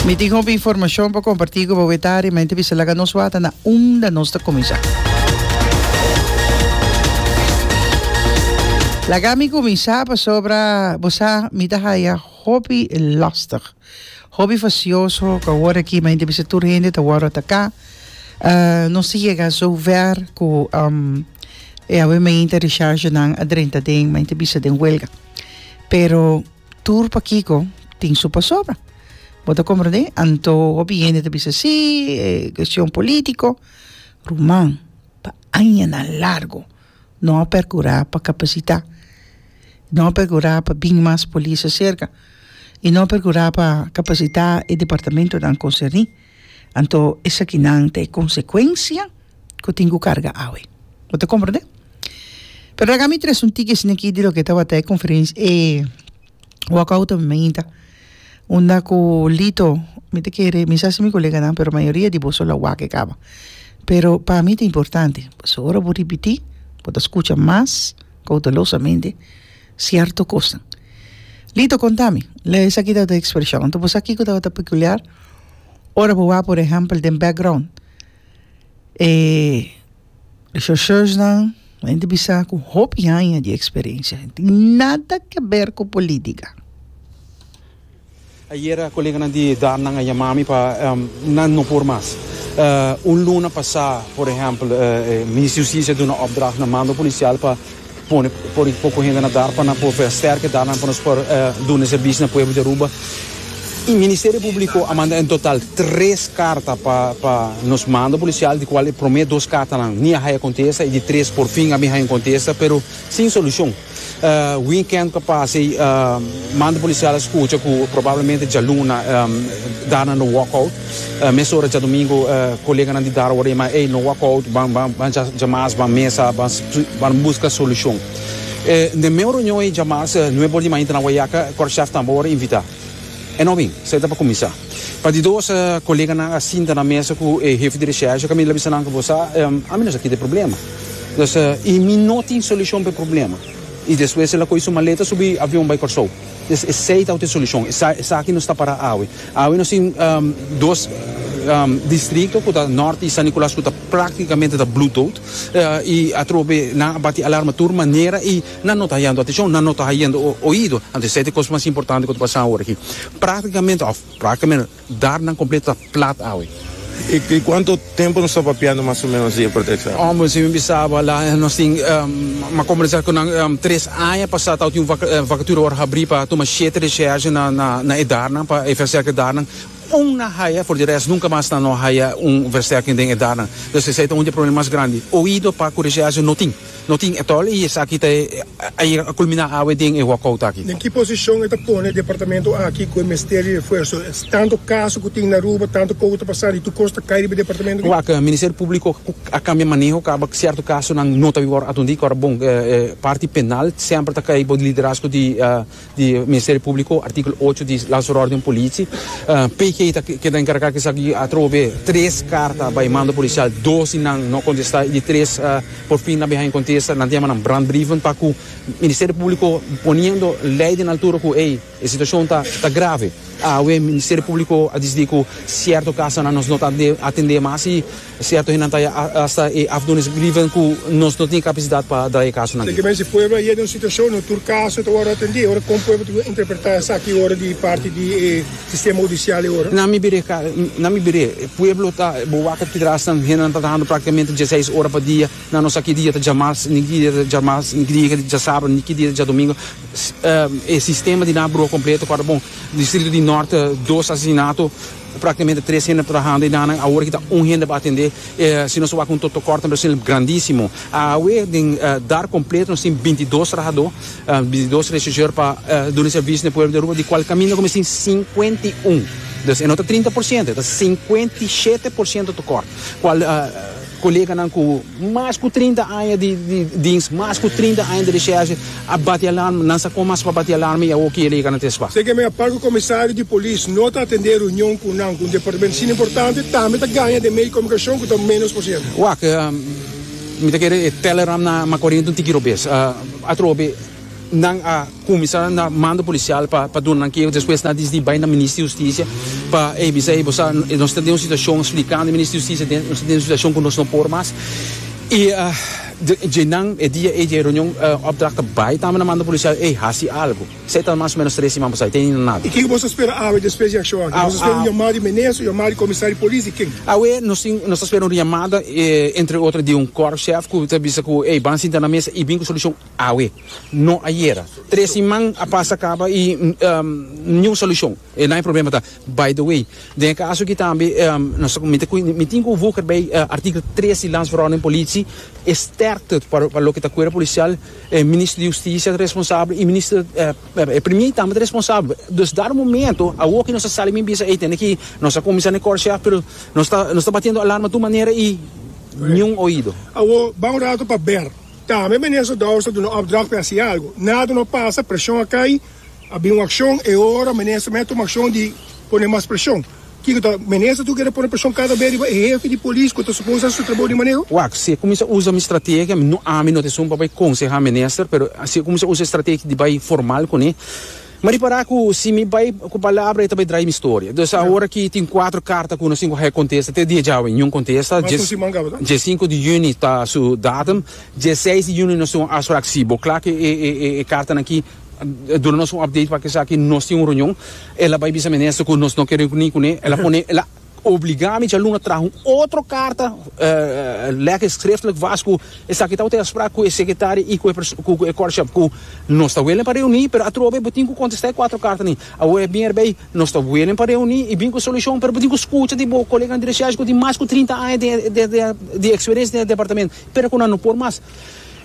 Mi tin hopi informacion pa comparti cu bo eta arí, ma enta bisa laga nos wata na unda nos ta cuminsa. Laga mi cuminsa pasobra bo sa mi ta haya hopi lastig, hopi facioso cu a worde aki, ma enta bisa tur hende ta worde ataka. Nos ta yega so ver cu e awe mainta rechargenan a drenta den, ma enta bisa den welga. Pero. Tur pakiko tin su pasobra. Bo ta komprendé? Anto hopi hende ta bisa sí, e kuestion polítiko. Ruman, pa añanan largu no a perkurá pa kapasitá, no a perkurá pa bin mas polis aserka i no a perkurá pa kapasitá e departamentunan konserní. Anto esakinan ta e konsekuensia ku tin ku karga awe. Bo ta komprende? Pero laga mi trese un tiki asina aki di loke tabata e konferensia, e wòkouto mi mainta, unda ku Lito, mi ta kere, mi sa si mi koleganan, pero mayoria di boso la wak e kaba. Pero pa mi ta importante, pasobra bo ripití, bo ta skucha mas koutelosamente. Cierto cosnan. Lito conta mi. Lei esaki ta ta expresion. Anto bo sa kico tabata peculiar? Ora bo wak por ehempel den background e rechercheursnan, hende bisa cu hopi hanja di experiencia. Nada ke ber cu politica. Ayera koleganan di Darnan a yama mi pa nan no por mas. Un luna pasá, por ehèmpel, e Minister Justisia a duna opdracht na mando polisial pa pone por e poco hende na Dar pa nan por a sterke Darnan pa nos por duna e serbishi na pueblo di Aruba. E Ministerio Publico a manda en total tres carta pa pa nos mando polisial di cual e prome dos cartanan ni a haya contesta y di tres por fin a bin haya un contesta pero sin solucion. Weekend pa pasa ei manda policial a scucha cu probablemente djaluna dar nan lo walkout. Mesora djadomingo coleganan di dar a word'ei ma ei no walkout ban ban djamas ban mesa ban ban busca solucion. Den meu reunion ei djamas nuebe ora di mainta na Wayaca Korshaf tambe a word invita. E no bin, esei ta pa cuminsa. Pa di dos coleganan a sinta na mesa cu e hefe di recherche, Camilo a bisa nan cu bo sa ami no sa kida e problema. Nos a i mi no tin solucion pa e problema. I despues el a coge su maleta subi avion bay Corsou. Pues esey tawat e solucion. Esaki nos ta para awe. Awe nos tin dos distrito cu ta Norte y San Nicolas cu ta practicamente ta blu dood. Y atrobe nan a bati alarma tur manera y nan no ta hayando atencion, nan no ta hayendo oido. Anto esey ta e cos mas importante cu ta pasa awe aki. Practicamente, of practicamente. Dar nan completo ta plat awe. Y cuanto tempo nos ta papiando mas o menos di e proteccion? Omo esey mi bisaba la nos tin mi a conversa cu nan tres aña pasa tawata tin un vacatura por habri pa tuma shete recherche na e dar nan pa e versterking dar nan un na haya for di rest nunca mas nan no haya un versterking den e dar nan entonces esey ta un di e problema mas grandi oido pa cu recherche no tin. No tin e tol y esaki ta e ayer a culmina awe den e walkout aki. Den ki posicion e ta pone e departamento aki cu e mester di refuerzo? Tanto caso cu tin na Aruba, tanto poco ta pasa, di tur cos ta cay riba e departamento aki. Wak, Ministerio Publico cu a cambia maneho caba cierto casonan no ta biba ora atundica, ora bon e parti penal semper ta cay bo liderazgo di. di Ministerio Publico, articulo ocho di Ley sur Orden Politie. PK ta keda encarga cu esaki atrobe tres carta bay mando policial, dos di nan no contesta y di tres por fin nan biaha contesta, nan ta yama nan brandbrieven pa cu Ministerio Publico poniendo ley den altura cu ey e situacion ta grave. Awe Ministerio Publico a decidi cu cierto casonan nos no ta atende mas y. Cierto hendenan ta ya hasta e afdoenis grieven cu nos no tin e capacidad pa dra e casonan aki. Esaki mester si pueblo a yega den un situacion, no tur caso ta wordo atende, ora con pueblo ta kiba interpreta esaki ora di parti di e sistema hudicial e ora? Na mi bira ca, na mi bira e pueblo ta, bo wak aki trasnan hendenan ta trahando practicamente diaseis ora pa dia, na nos aki dia ta djamas, niki dia ta djamas, niki dia ta djasabra, niki dia ta djadomingo, e sistema di nan broha completo, acorda bon, distrito di norte dos asesinato. Practicamente tres hende trahando y dannan awor kita un hende pa atende e si nos a wak un to tokort nan precio grandisimo. Awe den Dar completo nos tin bintidos trahador, bintidos regisseur pa duna servicio na e pueblo di Aruba di cual caminda cu mestin cincuenta y un. Dus e no ta trinta por ciento e ta cincuenta y shete por ciento tokort cual Koleganan ku mas ku trinta aña di dins, mas ku trinta aña di resherche a bati alarma. Nan sa kon mas pa bati alarma i awor kier lei ka na tin spa. Segemen a Parke Komisario di Polis no ta atendé reunion ku nan ku un departamento sin importante tambe ta gaña den medio di komunikacion ku ta menos por ciento. Wak, mi ta kere e Telegram na Macorino un tiki robes. Atrobe. Nan a kuminsá na mando polisial pa pa duna nan keo, despues nan a disidi bai na Minister di Hustisia pa e bisa ei, Bo sa nos ta den un situashon, splikando e Minister di Hustisia, den nos ta den un situashon ku nos no por mas. I dje nan, e dia ei, dje reunion, opdracht a bai tambe na mando polisial, ey, hasi algu. Esei ta mas o menos tres siman pasá, e teni nada. I ken ku boso a spera awe despues di ashò aki? Boso a spera un yamada di Minister, un yamada di Komisario di Polis, di ken? Awe nos tin, nos ta spera un yamada, entre otro di un Korpschef ku ta bisa ku, ey, ban sinta na mesa i bin ku solushon. Awe, no ayera. Tres siman a pasa caba y ni un solucion. E lain problema ta. By the way, den e caso aki tambe mi tin cu Wooker bay artikel tres di Landsverordening Politie. E sterkte pa loke ta Cuerpo Policial. E Minister di Husticia ta responsabel y Minister e Premier tambe ta responsabel. Dus dado momento awo aki nos a sali mi bisa ey tende ki nos a cuminsa necorcia pero nos ta batiendo alarma tur manera y ni un oido. Awo, bao un rato pa ber. Tambe menier Sodao sa duna opdracht pi hasi algu. Nada no a pasa, preshon a kai, a bin un akshon, e ora menier Semé a tuma akshon di pone mas preshon. Kiko ta menier sa tur kere pone preshon kada bes riba e hefi di polis ku ta supos hasi su trabou di maneho? Wak, si e kuminsá usa mi strategia, mi no ami no ta esun pa bai konsehá menier, pero si e kuminsá usa e strategia di bai formal kuné, M'a ripará ku si mi bai ku palabra e ta bai drai mi storia. Dus awor aki tin kuater karta ku nos tin ku hèk kontesta. Te dia djawe niun kontesta. Dje sinku di yüni ta su datum. Dje seis di yüni nos tin un afsprak. Sí, bo kla ku e kartanan aki duna nos un update pa esaki. Nos tin un reunion. El a bai bisa minister ku nos no ke reuní kuné. El a pone. Obligá mi djaluna traha un otro karta lege skriftlik wòs ku esaki tabata e afsprak ku e sekretario i ku e kòrsjèp ku nos ta welen pa reuní, pero atrobe bo tin ku kontestá e kuatro karta ni. Awor e bin erbei, nos ta welen pa reuní i bin ku e solushon, pero bo tin ku skucha di bo koleganan di reshèsh ku tin mas ku trinta aña di eksperensia den e departamento, pero ku nan no por mas.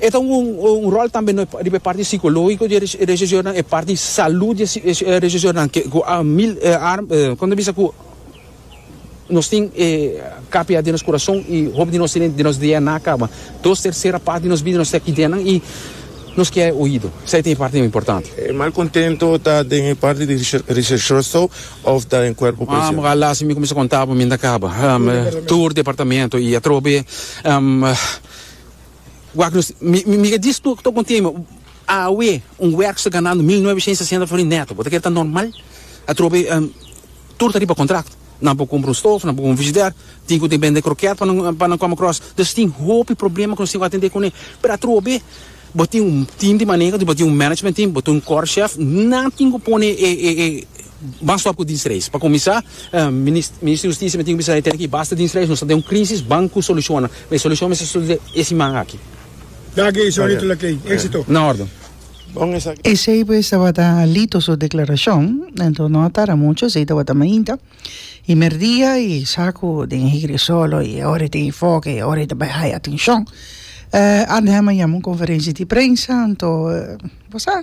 E ta un ròl tambe riba e parti sikológiko di e resheshornan, e parti salú di e resheshornan ku a mil armas, kon ta bisa ku. Nos tin e kapiá den nos kurason i hopi di nos tin den nos DNA kaba. Dos tersera parti di nos bida nos ta aki den nan i nos ke e oido. Esei ta e parti mas importante. E malkontento ta den e parti di recherchoso òf ta den kuerpo polisial? Ora las i mi kuminsá konta pa mi ta kaba tur departamento i atrobe. Wak-nos, mi, mi, mi ka diz tur ku ta un tema. Awe un werk sta ganando mil noveshients sesenta florins neto. Bo ta kere ta normal? Atrobe em tur ta riba kontrakto. Nan por kumpra un stof, nan por kumpra un frijidèr, tin ku tin bende krokèt pa nan pa nan kòm akros. Dus tin hopi problema ku nos tin ku atendé kuné. Pero atrobe bo tin un tim di manega, bo tin un management team, bo tin un kòrshèf, nan tin ku pone e e e Mas stop cu dinsreis. Pa cuminsa, Minister di Justicia mi tin cu bisa e tene ki basta dinsreis. Nos ta den un crisis, ban cu soluciona. Ma e solucion mester sulu den e siman aki. Dag e Saulito Laclay. Exito. Na orden. Bon esaki. Esey pues tabata Lito su declaracion. Enton no a tarda mucho, esey tabata mainta. Y merdia y sa cu den e hiri solo y ahora e tin e foke y ahora e ta bay haya atencion. Andy Hammond yama un conferencia di prensa, anto bo sa.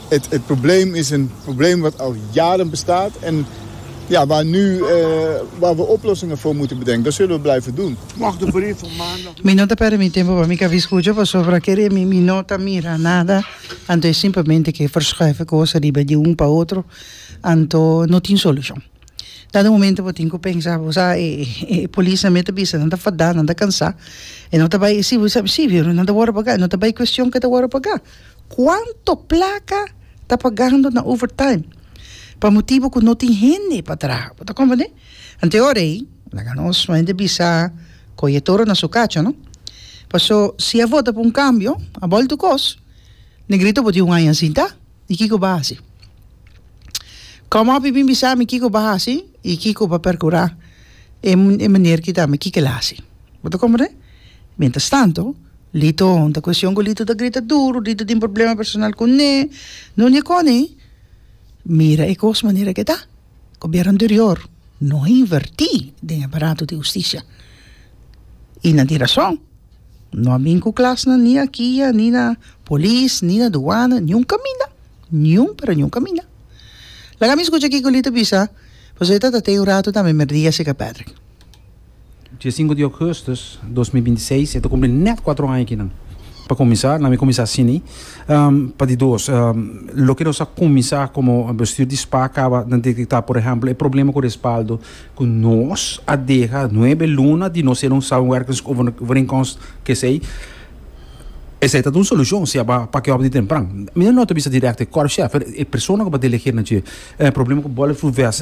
E probleem is een probleem wat al jaren bestaat en ja, waar nu, waar we oplossingen voor moeten bedenken. Dat zullen we blijven doen. Mi no ta permit tempo pa mi cabi scucha pasobra ker e mi mi no ta mira nada anto e simplemente ke verschuive cosa riba di un pa otro anto no tin solucion. Ta den momento bo tin cu pensa bo sa e e polis nan mi ta bisa nan ta fada nan ta cansa e no ta bay e civi civi nan ta wordo paga e no ta bay cuestion ke ta wordo paga. Cuanto placa ta pagando na overtime pa motibo cu no tin hende pa traha? Bo ta comprende? Anto e ora ey, laga nos suente bisa coye e toro na su cacho, no? Paso, si a vota pa un cambio, a bal tur cos, Negrito bo tin un aña sinta, y kico bo a haci? Come up y bin bisa mi kico bo a haci y kico bo a percura e meneer kitabami kico el a haci? Bo ta comprende? Mientras tanto. Lito, Un ta cuestion cu Lito ta grita duru, Lito tin problema personal cu Ney, Nuña Connie, mira e cos manera cu e ta, gobierno anterior no a inverti den e barato di husticia, y nan tin rason, no a bin cu clasnan ni aki a, ni na polis, ni na duana, ni un caminda, ni un pero ni un caminda. Laga mi scucha kico Lito bisa, pasobra e ta ta tey un rato tambe merdia cerca Patrick. Dia sinku di Augustus dos mil binti seis e ta kumpli nèt kuatro aña kinan. Pa kuminsá, nan mi kuminsá asini, pa di dos, loke nos a kuminsá komo bestuur di spa kaba ta detektá, por ehèmpel, e problema ku respaldo ku nos a deha nuebe luna di nos ser un samenwerkingsovereenkomst kesei. Esei ta ta un solushon si a ba pake òf di tempran. Mi no nota bisa dirèkto e kòrpschèf, e persona ku a ba delegé nan dje, problema ku bòl e fluves.